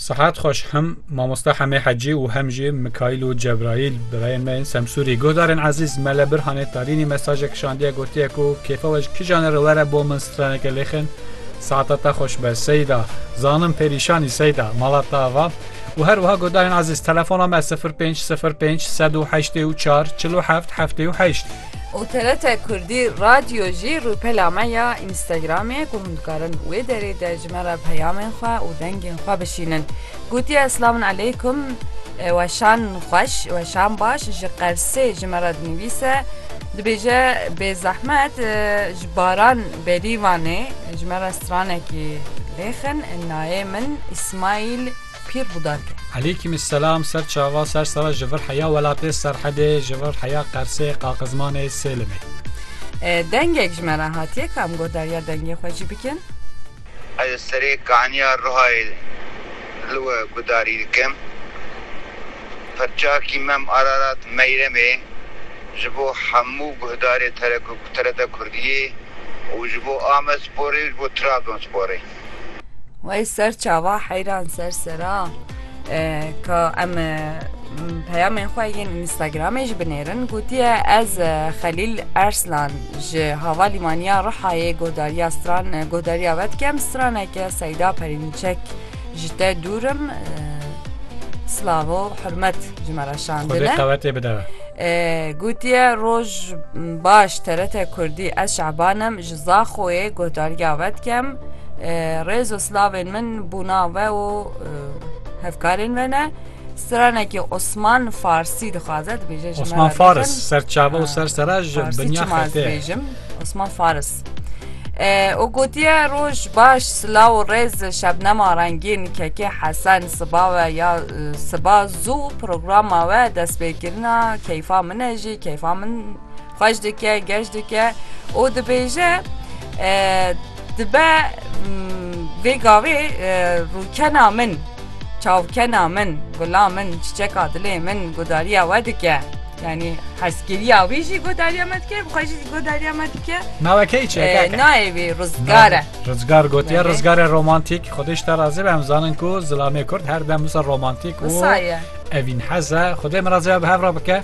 Sihet xweş hem mamosta Hemê Hecî û hem jî Mikaîl û Cebraîl birayên me yên Semsûrî. Guhdarên ezîz me li Birhanê Tarînî mesajek kişandiye gotiye ku kêfa we ji kîjan e re were bo min straneke lêxin saeta te xweş be Seyda. Zanim perîşanî Seyda mala te ava. û her wiha guhdarên ezîz telefona me 0505 184 47 78. Û TRT Kurdî Radyo jî rûpela me ya Înstagramê ye ku hûn dikarin wê derê de ji me re peyamên xwe û dengên xwe bişînin. Gotiye Selamun Eleykum weşan xweş weşan baş ji Qersê ji me re dinivîse dibêje bêzehmet ji Baran Berîvanê ji me re stranekî lêxin nayê min Îsmaîl pîr Budark e. Eleykîm selam ser çava ser sara ji vir heya welatê Serhedê ji vir heya Qersê, Qaqizmanê, Sêlimê. Dengek ji me re hatiye ka em guhdarîya dengê xwe jî bikin? Ez li serê kaniya Rihayê li we guhdarî dikim. Pirçakî Mem Ararat Meyremê ji bo hemû guhdarê TRT Kurdiyê û ji bo Amedsporê û ji bo Trabzonsporê. Wey ser çava heyran ser sera ka em peyamên xwe yên Instagramê ji binêrin gotiye ez Xelîl Erslan ji hava lîmaniya Rihayê godariya stran godariya ve dikem straneke Seyda Perînçek ji te dûrim slavo hurmet ji me re şandine qewetê bide gotiye roj baş terete kurdî ez şebanim ji Zaxoyê guhdariya we dikem. Rêz û slavên min bûna we û hevkarên we ne. Stranekî Osman Farsî dixwaze dibêje ji Osman Faris serçava û ser sera ji binya xetê. Osman Faris. û gotiye roj baş silaw û rêz şebnema rengîn kekê hesen siba we ya siba zû programa we destpêkirina keyfa min e jî keyfa min Xweş dike, geş dike û dibêje dibe vê gavê rûkena min, çavkena min, gula min, çiçeka dilê min gudariya we dike. Yanî hezkiriya wî jî gudariya me dike, xwe jî gudariya me dike. Navê kê çi ye? Navê wî Rizgar e. Rizgar gotiye, Rizgar e romantîk. Xwedê ji te razê be em zanin ku zilamê Kurd her dem wisa romantîk û evînhez e. Xwedê min razê be bi hev re bike.